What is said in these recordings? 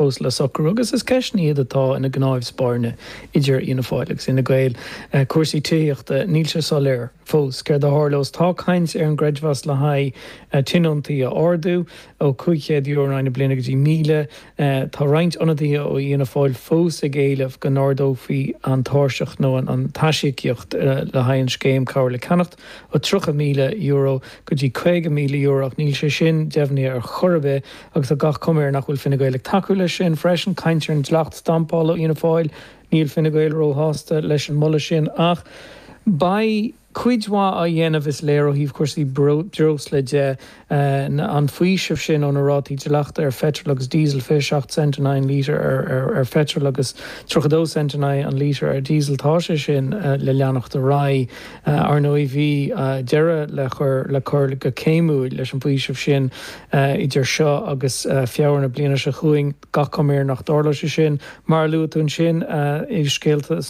fós le socrú agus is ceisteanna iad atá ina gcnámh spairne idir Fhianna Fáil agus Fhine Gael. Cúrsaí tithíochta, níl sé soiléir fós céard a tharlós. Tá caint ar an gcreidmheas le haghaidh tionóntaí a ardú ó €500 in aghaidh na bliana go dtí míle. Tá roinnt ionadaithe ó Fhianna Fáil fós ag éileamh go n-ardófaí an tairseach nó an t-aisíocaíocht le haghaidh an scéim Cabhair le Ceannacht ó €30,000 go dtí €50,000 ach níl sé sin deimhnithe ar chor ar bith. Agus tá gach cuma air nach bhfuil Fine Gael ag tacú leis sin freisin. Caint ar an dleacht stampála ó Fhianna Fáil, níl Fine Gael róshásta leis an moladh sin. Ach beidh cuid mhaith á dhéanamh, is léir, ó thaobh cúrsaí breosla de, an faoiseamh sin ó na rátaí dleachta ar pheitreal agus díosal, 27 cent in aghaidh an lítear ar pheitreal agus 32 cent in aghaidh an lítear ar dhíosal, tá sé sin le leanacht ar aghaidh. Ar ndóigh bhí deireadh le cur go céimiúil leis an bhfaoiseamh sin, idir seo agus Feabhra na bliana seo chugainn, gach cuma air nach dtarlóidh sé sin. Mar a luaigh tú ansin i scéalta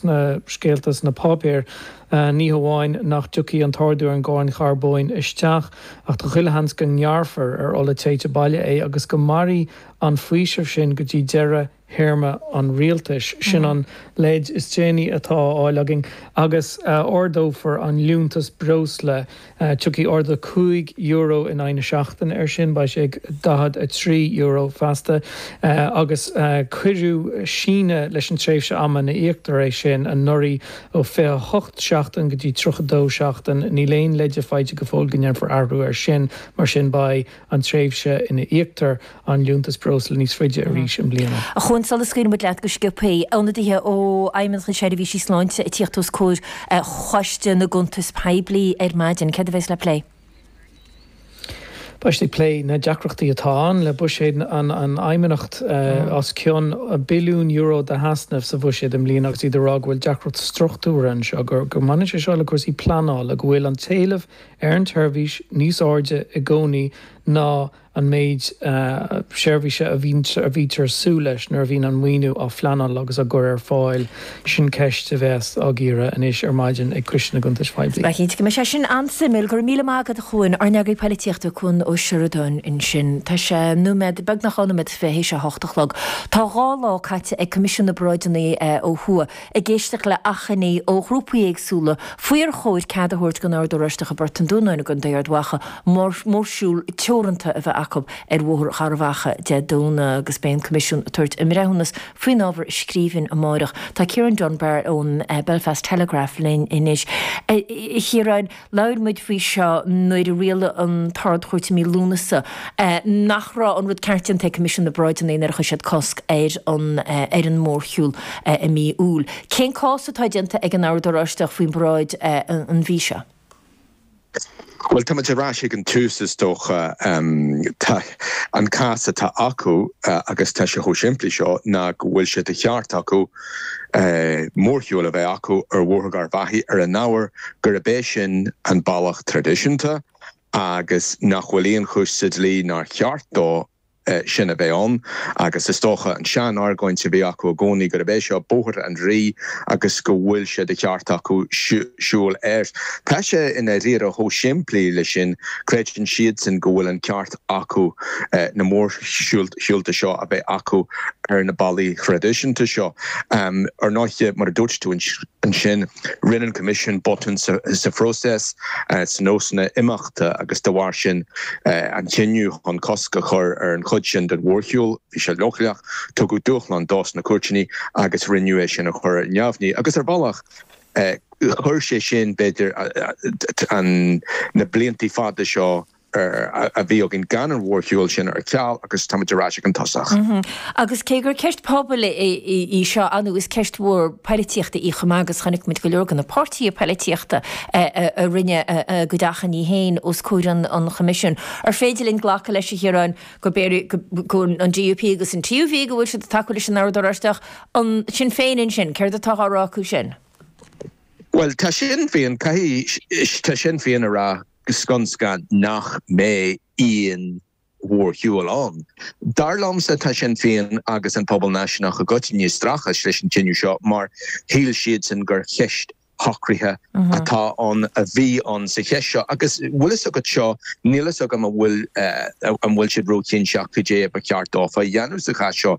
sna páipéir, ní hamháin nach dtiocfaidh an t-ardú ar an gcáin charbóin isteach, ach tá chuile sheans go ngearrfar ar ola téite baile é agus go mairfidh an faoiseamh sin go dtí deireadh théarma an rialtais. Sin an leid is déanaí atá á fháil againn. Agus ardófar an liúntas breosla. Tiocfaidh ardú cúig euro in aghaidh na seachtaine air sin. Beidh sé ag €43 feasta. Agus cuireadh síneadh leis an tréimhse ama ina íoctar é sin anuraidh, ó 28 seachtain go dtí 32 seachtain. Níl aon leide faighte go fóill go ndéanfar athrú air sin. Mar sin beidh an tréimhse ina íoctar an liúntas breosla níos faide arís i mbliana. A Chuain, sula scaoilfidh muid leat go sciobthaí, ionadaithe ó Fheidhmeannacht na Seirbhísí Sláinte ag tíocht os comhair Choiste na gCuntas Poiblí ar maidin. Céard a bheas le plé? Beidh siad ag plé na deacrachtaí atá ann le buiséad an Fheidhmeannacht, os cionn billiún euro d'easnamh sa bhuiséad i mbliana agus iad ag rá go bhfuil deacracht struchtúrtha anseo, go mbaineann sé seo le cúrsaí pleanála, go bhfuil an t-éileamh ar an tseirbhís níos airde i gcónaí ná an méid seirbhíse a bhítear ag súil leis nuair a bhíonn an maoiniú á phleanáil agus á gcur ar fáil, sin ceist a bheas á gcíoradh anois ar maidin ag Coiste na gCuntas Poiblí. Ba chinnte go mbeidh sé sin an-suimiúil. Go raibh míle maith agat, a Chuain, ár n-eagraí polaitíochta, Cuan Ó Seireadáin ansin. Tá sé nóiméad, beagnach dhá nóiméad fichead tar éis a hocht a chlog. Tá dhá lá caite ag Coimisiún na bParáideanna ó thuaidh. ag éisteacht le achainí ó ghrúpaí éagsúla faoi ar chóir cead a thabhairt don Ord Oráisteach i bPort an Dúnáin i gContae Ard Mhacha mórshiúl teoranta a bheith acu ar Bhóthar Gharbhachaidh Dé Domhnaigh agus beidh an Coimisiún ag tabhairt a mbreithiúnas faoin ábhar i scríbhinn amárach. Tá Ciarán Dunbar ón Belfast Telegraph linn anois. A Chiaráin, Labhair muid faoi seo nuair a rialaigh an tArd-Chúirt i mí Lúnasa nach raibh an rud ceart déanta ag Coimisiún na bParáideanna nuair a chuir siad cosc ar an mórshiúl i mí Iúil. Cén cás atá déanta ag an Ord Oráisteach faoin bparáid an mhí seo? Bhuel, tá muid ar ais ag an tús, is dócha. An cás atá acu, agus tá sé chomh simplí seo, ná go bhfuil sé de cheart acu, mórshiúil a bheith acu ar Bhóthar Gharbh Achaidh ar an ábhar gurb é sin an bealach traidisiúnta agus nach bhfuil aon chúis sa dlí nár cheart dó sin a bheith ann agus is dócha an sean-argóint a bhí acu i gcónaí gurb é seo Bóthar an Rí agus go bhfuil sé de cheart acu siúl air. Tá sé i ndáiríre chomh simplí leis sin, creideann siadsan go bhfuil an ceart acu na mórshiúlta seo a bheith acu ar na bealaí traidisiúnta seo. Ar ndóighe, mar a dúirt tú ansin, rinne an Coimisiún botún sa phróiseas, sna nósanna imeachta agus dá bharr sin, an cinneadh chun cosc a chur ar an chuid sin den mhórshiúl, bhí sé leochaileach, tugadh dúshlán dó sna cúirteanna agus rinneadh é sin a chur ar neamhní. Agus ar bhealach, chuir sé sin, b'fhéidir, na blianta fada seo a bhí againn gan an mhórshiúl sin ar ceal agus táimid ar ais ag an tosach. Agus cé gur ceist pobail í seo inniu, is ceist mhór polaitíochta í chomh maith agus chonaic muid go leor de na páirtithe polaitíochta a rinne a gcuid achainí féin os comhair an Choimisiúin. An féidir linn glacadh leis, a Chiaráin, go an DUP agus an TUV go bhfuil siad ag tacú leis an Ord Oráisteach? An Sinn Féin ansin, céard atá á rá acu sin? Bhuel, tá Sinn Féin, caithfidh, tá Sinn Féin ag rá, go scun scan nach mbeidh aon mhórshiúl ann. Dar liomsa, tá Sinn Féin agus an pobal náisiúnach i gcoitinne ag streachailt leis an chinneadh seo mar shíl siadsan gur cheist shocraithe atá ann, a bhí ann sa cheist seo. Agus bhfuil a fhios agat seo, níl a fhios agam an bhfuil siad róchinnteach cad é a ba cheart dófa a dhéanamh sa chás seo.